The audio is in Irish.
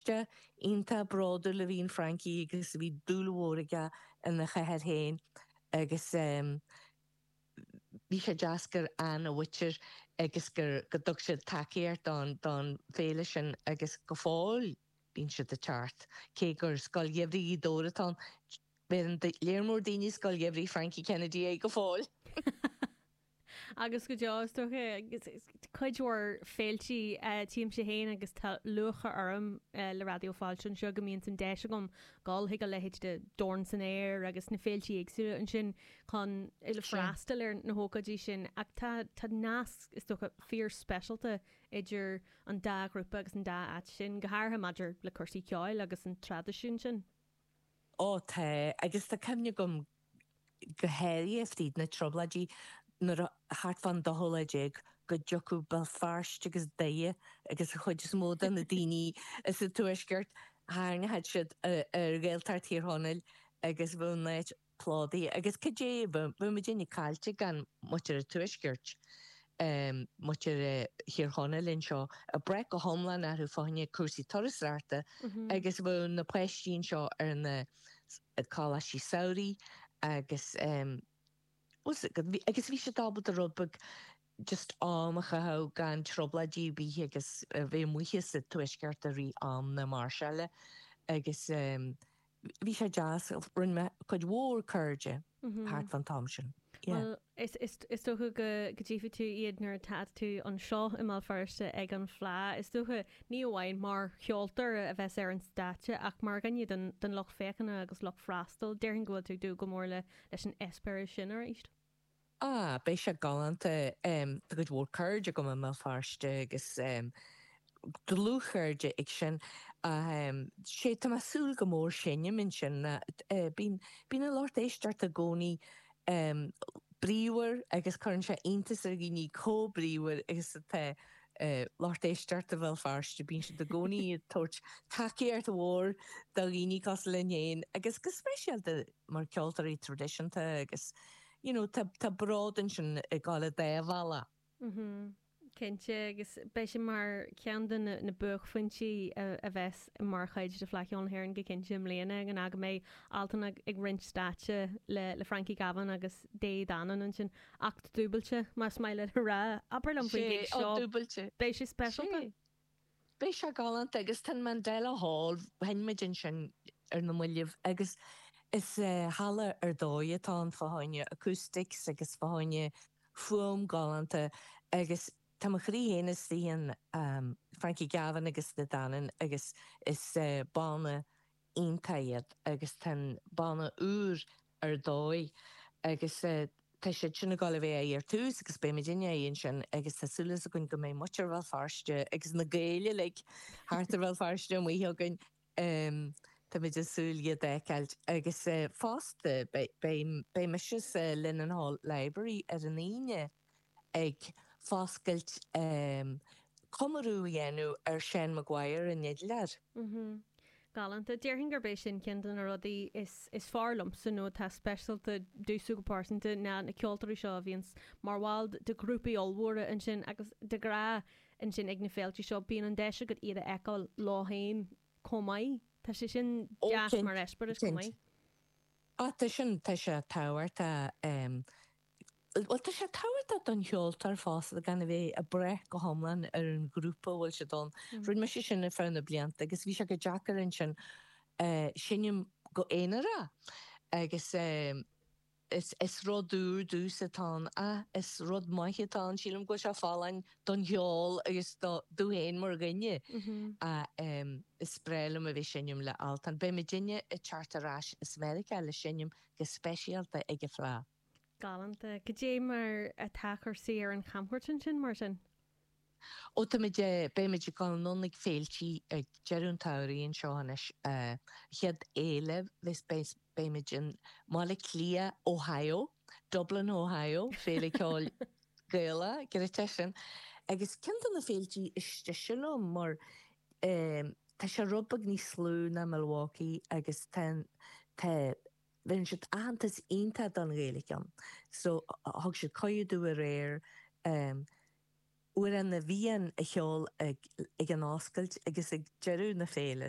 Feirsteach iontach bródúil a bhí in Frankie agus bhí dúil mhór aige ina chathair féin agus bhí sé deas gur ann a mhuintir agus gur go dtug siad tacaíocht don fhéile sin agus go fóill bíonn siad ag teacht. Cé gur Scoil Gheimhridh Ghaoth Dobhair atá ann, bheireann léar mór daoine Scoil Gheimhridh Frankie Kennedy air go fóill! agus go deo, is dócha, cuid mhór féiltí tchímse féin agus tá lúcháir orm le Raidió Fáilte anseo go mbíonns an deis agam dul chuig a leithéid de Dorn san Aer agus na féiltí éagsúla ansin chun freastal ar na hócáidí sin ach tá tá nasc, is dócha, fíorspeisialta idir an dá ghrúpa agus an dá áit sin, go háirithe maidir le cúrsaí ceoil agus an traidisiún sin. Ó tá, agus tá cuimhne agam go háirithe fríd na Trioblóidí nuair a, thart fán dóú lá déag, go dtiocfadh Béal Feirste agus Doire agus an chuid is mó de na daoine as an Tuaisceart, tharraingeodh siad ar Ghaeltacht Thír Chonaill agus bheadh an áit, Plódaithe agus cad é bheadh muidinne caillte gan muintir an Tuaiscirt, muintir Thír Chonaill anseo ag brath go hiomlán orthu fá choinne cúrsaí turasóireachta agus bheadh na páistí anseo ar na coláistí samhraidh agus agus bhí siad ábalta rud beag just am a chaitheamh gan trioblóidí ar bith agus bheith amuigh as an Tuaisceart i rith am na máirseála agus. bhí sé deas, rinne mé cuid mhór cairde thart fan t-am sin. Yeah. Bhuel, is dócha go dtchífidh tú iad nuair atá tú anseo i mBéal Feirste ag an Fleadh, is dócha, ní amháin mar cheoltóir a bheas ar an stáitse ach mar dhuine den lucht féachana agus lucht freastail. Déarfainn go bhfuil tú ag dúil go mór leis an eispéireas sin arís. Ah, beidh sé galánta. Tá cuid mhór cairde agam i mBéal Feirste agus dlúthchairde ag sin. Sea, tá mé ag súil go mór, seinm ansin. Bíonn an lucht éisteachta i gcónaí bríomhar agus cuireann sé iontas ar dhaoine chomh bríomhar agus atá lucht éisteachta Bhéal Feirste. Bíonn siad i gcónaí ag tabhairt tacaíocht mhór do dhaoine cosúil linn féin agus go speisialta mar cheoltóirí traidisiúnta agus. You know, tá, tá bród ansin ag dul an dá bhealach. Mhm, cinnte, agus beidh sé mar cheann de na, na buaicphointí a, a bheas mar chuid de Fleadh Cheoil na hÉireann go cinnte i mbliana, ná go mbeidh Altan ag, ag roinnt stáitse le, le Frankie Gavin agus De Dannan ansin. Acht dúbailte, más maith leat a rá. Abair liom faoin Sé, gig seo. acht dúbailte. Beidh sé speisialta? Sé. Beidh sé galánta agus tá an Mandela Hall, sheinn muid ansin ar na moillibh agus is halla ar dóigh atá ann fá choinne acoustics agus fá choinne fuaim galánta agus tá mo chroí féin istigh in Frankie Gavin agus De Dannan agus is banna iontach iad agus tá an banna úr ar dóigh agus tá siad sin ag dul a bheith amuigh ar tús agus beidh muidinne amuigh ansin agus tá súil againn go mbeidh muintir Bhéal Feirste agus na Gaeil uilig thart ar Bhéal Feirste amuigh againn táimid ag súil iad a fheiceáil agus fosta beidh mise sa Linen Hall Library ar an Aoine ag foscailt comóradh a dhéanamh ar Seán McGuire an fidléir. Galánta. Déarfainn gurb é sin ceann de na rudaí is fearr liomsa, nó atá speisialta domhsa go pearsanta, ná na ceoltóirí seo a bhíonns mar bhaill de ghrúpaí ollmhóra ansin agus de ghnáth ansin ag na féilte seo. Bíonn an deis agat iad a fheiceáil leo féin chomh maith. Tá sé sin deas mar eispéireas chomh maith. Ó, cinnte. Tá sin, tá sé tábhachtach. bhuel, tá sé tábhachtach don cheoltóir fosta gan a bheith ag brath go hiomlán ar an ghrúpa a bhfuil siad ann. Rinne mise sin ar feadh na blianta agus bhí sé go deacair ansin seinm go aonarach agus is rud úr domhsa atá ann ach is rud maith atá ann, sílim go bhfuil sé folláin don cheol agus domh féin mar dhuine ach is breá liom a bheith ag seinm le Altan. Beidh muidinne ag teacht ar ais as Meiriceá le seinm go speisialta ag an Fleadh. Galánta. Cad é mar atá cúrsaí ar an chamchuairt ansin, mar sin? Ó, táimid, beimid ag dul anonn ag féiltí ag deireadh an tsamhraidh anseo anois. chéad fhéile, beimid i mBaile Átha Cliath, Ohio, Dublin, Ohio, Féile Ceoil Gaelach, giorraithe sin. Agus ceann de na féiltí is deise liom mar tá sé rud beag níos lú ná Milwaukee agus tá, tá, Bheireann siad aitheantas iontach don Ghaeilge ann, so thug siad cuireadh domh aréir Amhrán na bhFiann a cheol ag an oscailt agus ag deireadh na féile.